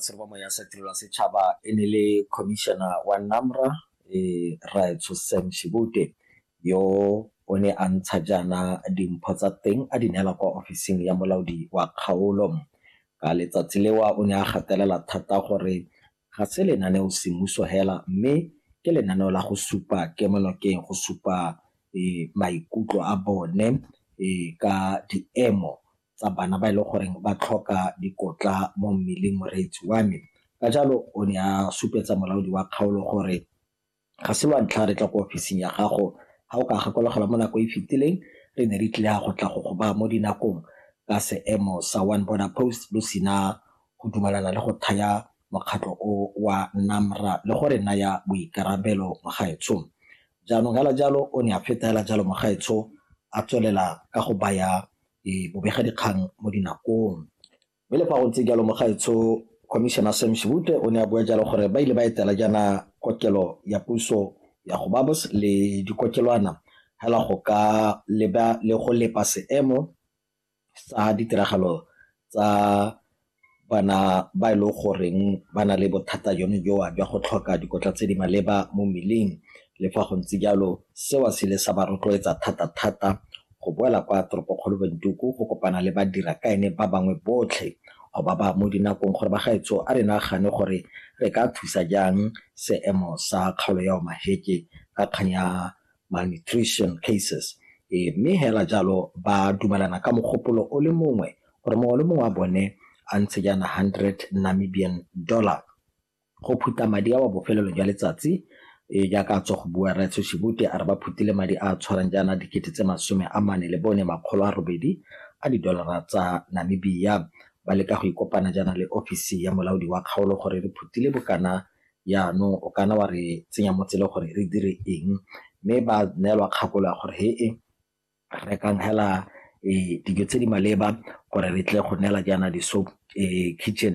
Tshelobomo ya sa Tirelo ya Setšhaba e ne le Khomišene wa NAMRA, Rraetsho Sam Shibute, yo o ne a ntsha jaana dimpho tsa teng a di neela kwa ofising ya molaodi wa kgaolo. Ka letsatsi leo o ne a gatelela thata gore ga se lenaneo semmuso hela mme ke lenaneo la go supa kemonokeng, go supa maikutlo a bone ka diemo tsa bana ba e leng gore ba tlhoka dikotla mo mmeleng moreetsi wa me. Ka jalo o ne a supetsa molaodi wa kgaolo gore ga se lwa ntlha re tla ko ofising ya gago ga o ka gakologelwa mo nako e fetileng re ne re tlile go tla go go baya mo dinakong ka seemo sa one border post lo sena go dumalana le go thaya mokgatlho o wa NAMRA le go re naya boikarabelo mogaetsho. Jaanong hela jalo o ne a feta hela jalo mogaetsho a tswelela ka go baya bobegadikgang mo dinakong. Mme le fa go ntse jalo mogaetsho Commissioner Sam Shivute o ne a bua jalo gore ba ile ba etela jaana kokelo ya puso ya go babos le dikokelwana hela go ka leba le go lepa seemo sa ditiragalo tsa Bana ba e leng goreng ba na le bothata jone jo jwa go tlhoka dikotla tse di maleba mo mmeleng le fa go ntse jalo seo se ile sa ba rotloetsa thata-thata go boela kwa toropokgolo Windhoek go kopana le badira kaene ba bangwe botlhe go ba ba mo dinakong gore bagaetsho a re nagane gore re ka thusa jang seemo sa kgaolo ya Omaheke ka kgang ya malnutrition cases, e, mme hela jalo ba dumelana ka mogopolo o le mongwe gore mongwe le mongwe wa bone a ntshe jaana 100 Namibian dollar go phutha madi a wa bofelelo jwa letsatsi e jaaka a tswa go bua Raitso Shibute a re ba phutile madi a a tshwarang jaana dikete tse masome a mane le bone makgolo a robedi a didolara tsa Namibia ba leka go ikopana jaana le ofisi ya molaodi wa kgaolo gore re phutile bokana Jaanong o kana wa re tsenya mo tseleng gore re dire eng, mme ba neelwa kgakololo ya gore he-e rekang hela dijo tse di maleba gore re tle go neela jaana di-soup kitchen